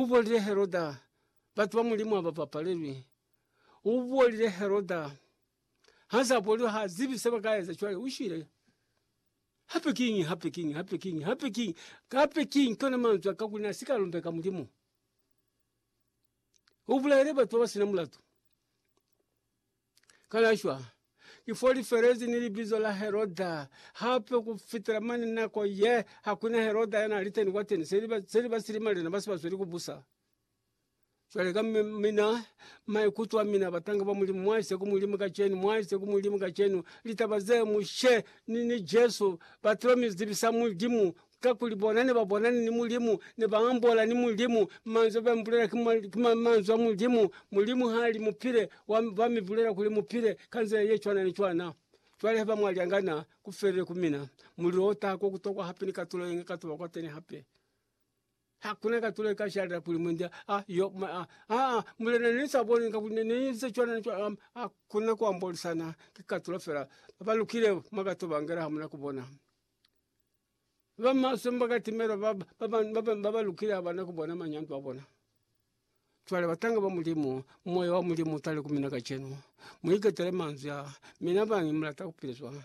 U buolile Heroda, Batu ba Mulimu ha ba bapalelwi. U buolile Heroda, Ha za buoliwa, ha zibi se ba ka eza. Cwale u shwile. Hape kiñi, hape kiñi, hape kiñi, hape kiñi, hape kiñi, kona manzwi a ka kuli na si ka lumbeka Mulimu. U bulaile batu ba ba sina mulatu. Kana shwa, ki fo li felezi ni libizo la Heroda, hape ku fitela mane nako ye ha ku na Heroda ya na li teni kwateni, se li ba, se li ba silimalena ba si ba sweli ku busa. Cwale ka mi, mina, maikuto a mina, batanga ba Mulimu, mwa isa ku Mulimu kacenu, mwa isa ku Mulimu kacenu, litaba ze mushe ni, ni Jesu ba tilo mi zibisa Mulimu Kakuli bona ne ba bonani ni Mulimu, ne ba ambola ni Mulimu, manzwi a ba mi bulela ki, ki manzwi a Mulimu. Mulimu ha li mu pile, wa, ba mi bulela kuli mu pile, ka nzila ye cwana ni cwana. Cwale haiba mwa lyangana, ku felile ku mina. Mulilo o taha ko ku tokwa hape ni katulo ye nge ka tuba kwateni hape. Hakuna katulo ye ka shalela kuli mwendi a yo, ma, a, aa, Mulena, ne ni sa boni nga kuli ne ni inze cwana ni cwana. Hakuna ku ambolisana, ki katulo fela. Ba lukile mwa ka tuba ngela hamuna ku bona. Ba maswe ni ba ka timelo ba ba lukile ha ba na ku bona manyandwa a bona. Cwale batanga ba Mulimu, Moya wa Mulimu u tale ku mina kacenu. Mu iketele manzwi a, Mina bangi mu lata ku pila cwana.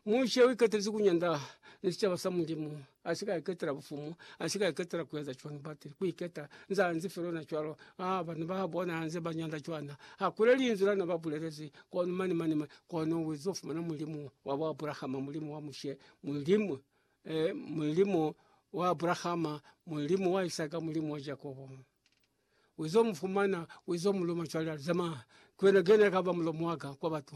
Mushe u iketelezi ku nyanda ni sicaba sa Mulimu, a si ka iketela bufumu, a si ka iketela ku eza cwana bati ku iketa. Nza nzi fela ona cwalo, aa banhu ba bona nze ba nyanda cwana. Ha ku na linzwi la na ba bulelezi, kono mane mane Kono u ezize fumana Mulimu wa bo Abrahama, Mulimu wa Mushe, Mulimu, eh, Mulimu wa Abrahama, Mulimu wa Isaka, Mulimu wa Jakobo. U ezize mu fumana, u ezize mu luma cwale, ali zama, ki wena, ki wena kaba mulomo waka kwa batu.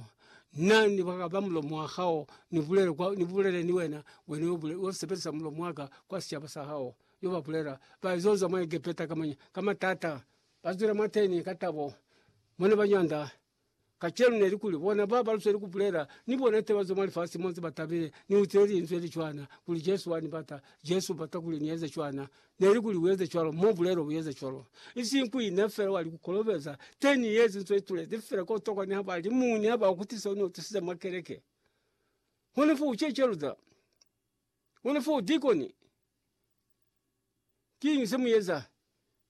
Na ni kaba mulomo wa hao, ni bulele kwa, ni bulele ni wena, wena yo bule, yo sebelisa mulomo waka kwa sicaba sa hao. Yo ba bulela, ba zonza mwa Egepeta ka manya, ka matata. Ba zwile mwateni ka tabo, mone ba nyanda, Kacenu neli kuli bona ba ba lusweli kubulela ni bona ite bazo mwa lifasi mo nze batabile. Ni utile linzwi li cwana kuli Jesu wani bata. Jesu ubata kuli ni eze cwana. Neli kuli ueze cwalo mo bulelo ueze cwalo. Isili ku ina fela wali kukolobeza. Te ni yezi nzo itulezi fela ko tokwa ni haba li muni haba ukutisa une utusize mwa keleke. Hune fo uchecheluza. Hune fo udikoni. Kinyi se muyeza.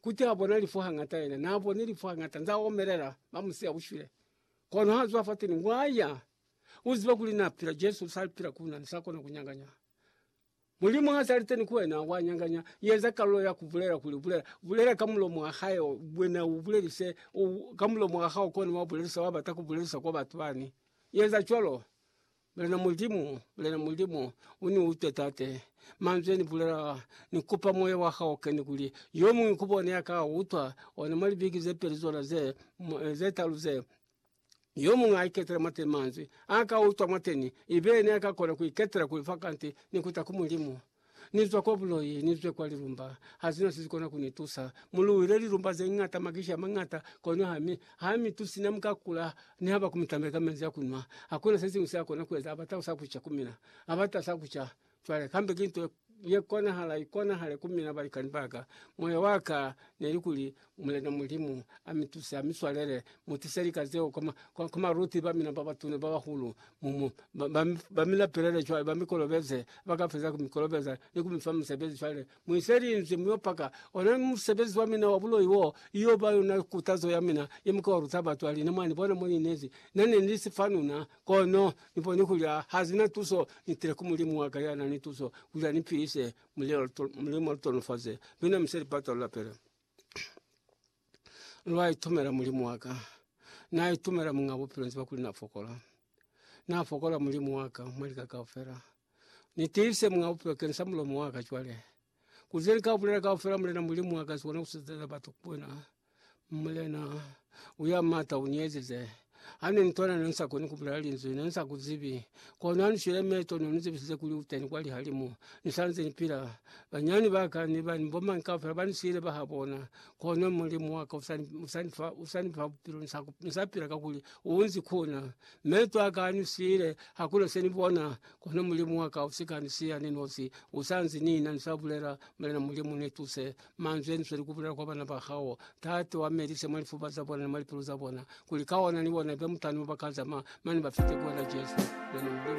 Kuti ha bona lifu hangata yena na boni lifu hangata nza omelela ba musiya ushwile. Kono ha zwa fateni ngwaya uziba kuli na pila Jesu usali pila kuna nisa kona kunyanganya. Mulimu ha sali teni kwena wa nyanganya yeza kalo ya kubulela kuli bulela bulela ka mulomo wa hae ubwena ubulelise u ka mulomo wa hao koni wa bulelisa wa bata kubulelisa kwa batu bani yeza cwalo. Mulena Mulimu, Mulena Mulimu, uni utwe Tate, manzwi yeni bulela, ni kupa Moya wa hao ukeni kuli yomuñwi ku bone yaka utwa ona mwa libiki ze peli zona ze, ze talu ze, yomuñwi a iketele mwateni manzwi, aka utwa mwateni, ibe yena yaka kona ku iketela kuli fa kanti ni kuta ku Mulimu. Ni zwa kwa buloi, ni zwe kwa lilumba, ha zina se si kona ku ni tusa. Mu luhile lilumba ze ñata, makishi a mañata, kono ha mi, ha mi tusi. Ne mu ka kula ni haba ku mi tambela ka menzi a ku nwa. Ha ku na se siñwi se a kona ku eza. A bata sa ku ca ku mina. A bata sa ku ca. Cwale, kambe ki nto ye konahala, ikonahale ku mina, balikani ba ka. Moya wa ka ne li kuli, Mulena Mulimu amituse, amiswalele, mutise lika zeo kwa maluti bamina babatuna babahulu, mumu bamilapelele cwale, bamikolobeze, bakafeza kumikolobeza ni kumifa musebezi. Cwale muise linzwi, muyo paka ona musebezi wamina wa buloi wo, iyo ba yona kutazo yamina ye muke wa luta batu. Aline, Mwanibona mo ninezi, nane nili sifanuna, kono niboni kuli hazina tuso, nitile ku Mulimu waka yanani tuso kuli anipilise, mulimo lutonofaze, luna museli pata lulapele. lwai tumela mulimu waka nai tumela mung'a bupilo nziba kuli na fokola, na fokola mulimu waka mwalika kaufela nitiise mung'a bupilo kensa mulomo waka cwale kuze nkabulela kaufela mulena mulimu waka sibona usizile batu kwena mulena uya mata uniezize. Hane nitona ne nsa koni kubulela linzwi, ne nsa kuzibi. Kono hane shwile meto no nizibisize kuli uteni kwa lihalimu. Nisanze nipila. Banyani baka ni bani bomani kaufela bani siile baha bona. Kono Mulimu waka usani usani fa usani fa bupilo nsa nsa pila kakuli uunzi kuna. Meto aka ani siile hakuna seni bona kono Mulimu waka usika ni siya ni nosi. Usanzi nina nsa bulela, Mulena Mulimu ni tuse. Manzwi anisweli kubulela kwa bana ba hao, Tate, uamelise mwa lifuba za bona ni mwa lipilu za bona, kuli ka ona ni bona ibe mutana mo ba ka zama, mane ba fite ku wena, Jesu. Wena Mulimu.